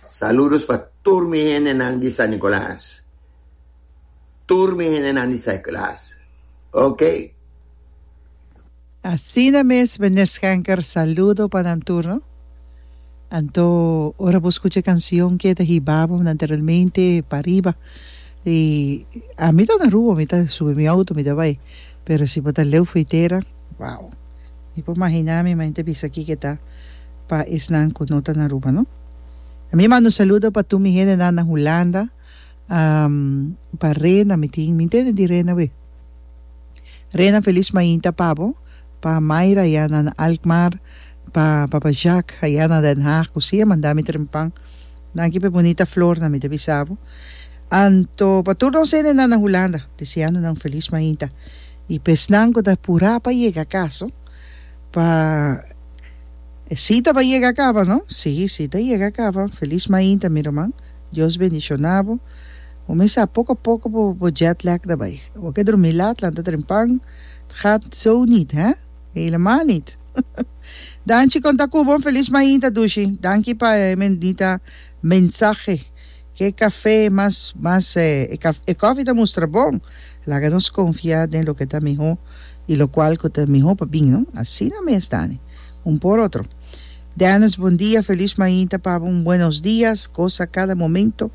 Saludos pa tur mi hendenan di San Nicolas, tur mi hendenan di San Nicolas, ok. Asina mes Mene Schenker saludo pa nan tur no. Anto ora bo scucha e cancion ke ta hiba bo anteriormente pariba y ami ta na Aruba mi ta subi mi auto mi ta bay pero si bo ta leu frontera Wow! Mi por mahiná mi mente bisa kiko ta pa esnan ku no ta na Aruba, no? Mi manda un saludo pa tur mi hendenan na Hulanda, pa Rena mi tin, mi ntende di Rena awe. Rena, felis mainta pa bo, pa Mayra ayá na na Alkmaar, pa papa Jaak ayá na Den Haag ku siña manda mi trempan. Danki p'e bunita flornan mi ta bisa bo. Anto pa tur nos hendenan na Hulanda, deseando nan un felis mainta. I pa esnan ku ta purá pa yega kaso, pa e sita pa yega kaba no? Sí, sí ta yega kaba. Felis mainta mi ruman. Dios bendishoná bo. Bo mes sa poko a poko bo bo jet lag ta bai. Bo ke drumí lat, lanta trempan. Het gaat zo niet, hè? Helemaal niet. Danchi konta ku bo. Felis mainta Dushi. Danki pa e bendita mensahe. Ke kafé mas mas e kòfi ta mustra bon. Laga nos konfia den loke ta mihó i lokual ku ta mihó pa bin. Asina mes ta ni un por otro. Dennis bon dia felis mainta pabo un buenos dias gosa kada momento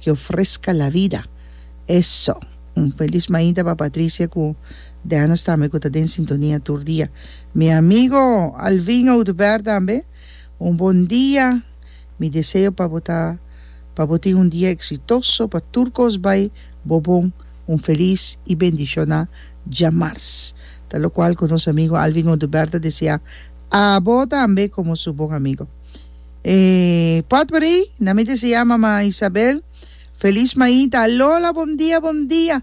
ke ofreska la vida eso un felis mainta pa Patricia ku Dennis tambe ku ta den sintonia tur dia mi amigo Alvin Oduber tambe un bon dia. Mi deseo pa bo ta pa bo tin un dia exitoso, pa tur cos bay bo bon, un feliz y bendiciona djamars. Ta locual cu nos amigo Alvin Oduber ta desea abo tambe como su bon amigo. E potbreey na mi desea mama Isabel feliz mainta alola bon dia bon dia.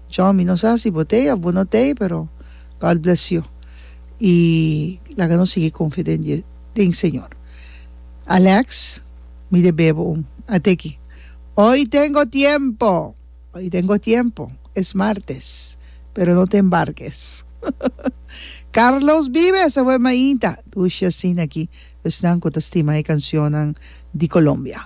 Tjò, mi no sa si bo t'ei of bo no t'ei, pero God bless you. I laga nos sigui konfia den Dios, den Señor. Alex, Mi deb'é bo un ateki. Hoy tengo tiempo! Hoy tengo tiempo! Es martes, pero no t'e embarques. Carlos Vives, a wou mainta! Dusha asina aki esnan ku ta stima e kansionnan di Colombia.